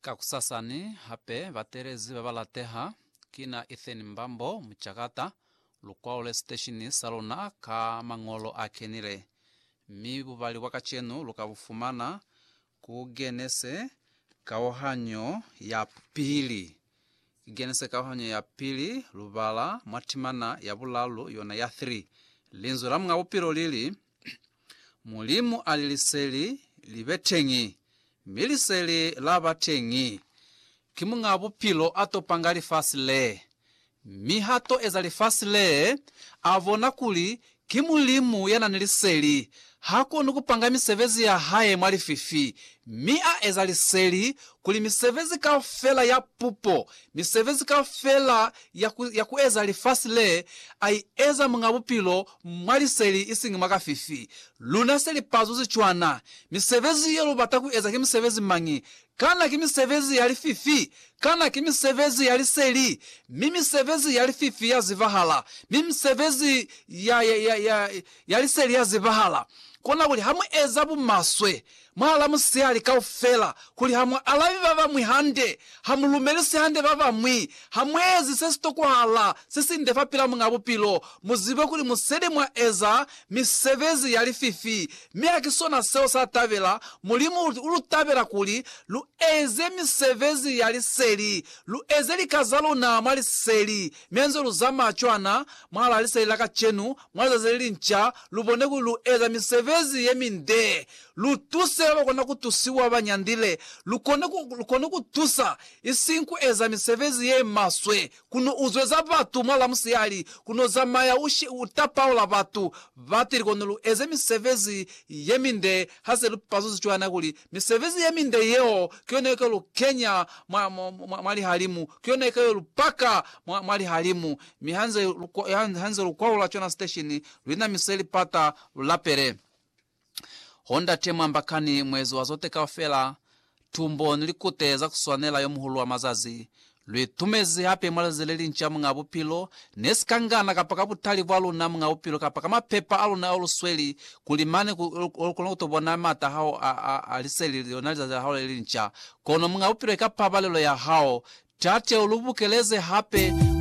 Kakusasani hape bateelezi babalateha kina Ethan Mbambo, Mucakata, lu kwaole siteshini saluna ka mañolo a kenile, mi bubali bwa kacenu luka bufumana ku Genese Kauhanyo ya Pili. Ki Genese Kauhanyo ya Pili, lubala mwa timana ya bulalu yona ya 3. Linzwi la Muñ'a Bupilo lili. Mulimu ali liseli li be teñi, mi liseli la ba teñi. Ki Muñ'a Bupilo a to panga lifasi le. Mi ha to eza lifasi le, a bona kuli ki Mulimu ya na ni liseli. Ha koni ku panga misebezi ya hae mwa lififi, mi a eza liseli kuli misebezi kaufela ya pupo, misebezi kaufela ya ku, ya ku eza lifasi le A i eza Muñ'a Bupilo mwa liseli, isiñi mwa kafifi. Luna se li pazuzi cwana. Misebezi ye lu bata ku eza ki misebezi mañi? Kana ki misebezi ya lififi? Kana ki misebezi ya liseli? Mi misebezi ya lififi ya zibahala, mi misebezi ya, ya, ya, ya, ya liseli ya zibahala. Kona kuli ha mu eza bumaswe, Mwa la musihali kaufela, kuli ha mu alabi ba bañwi hande, ha mu lumelisi hande ba bañwi, ha mu ezi se si tokwahala, se si nde fa pila Muñ'a Bupilo, mu zibe kuli mu seli mwa eza misebezi ya lififi, mi ha ki sona seo sa tabela Mulimu. U lu tabela kuli lu eze misebezi ya liseli, lu eze lika za luna mwa liseli, mi ha nze lu zamaya cwana mwa la liseli la kacenu, mwa lizazi le linca, lu bone kuli lu eza misebezi ye mindee Lu tuse ba ba kona ku tusiwa ba nyandile. Lu kone ku, lu kone ku tusa, isiñi ku eza misebezi ye maswe, ku no uzweza batu mwa lamusihali, ku no zamaya u, u tapaula batu. Batili kone lu eze misebezi ye minde ha se lu pazuzi cwana, kuli misebezi ye minde yeo ki yona ye ka lu kenya mwa, mwa, mwa, mwa lihalimu, ki yona ye ka yo lu paka mwa, mwa lihalimu. Mi ha nze lu, ha nze lu kwaula cwana siteshini, lu inamiseli pata, lu lapele. Ho Ndate Mwambakani, Muezi wa Zote Kaufela, Tumbo ni Likute za Kuswanela yo Muhulu wa Mazazi, lwi tumezi hape mwa lizazi le linca Muñ'a Bupilo, ne si ka ngana kapa ka butali bwa luna Muñ'a Bupilo kapa ka mapepa a luna ao lu sweli, kuli mane ku lu kona ku to bona m'ata a hao a, a, a liseli, lona lizazi la hao le linca. Kono Muñ'a Bupilo eka pabalelo ya hao. Tate, u lu bukeleze hape mwa.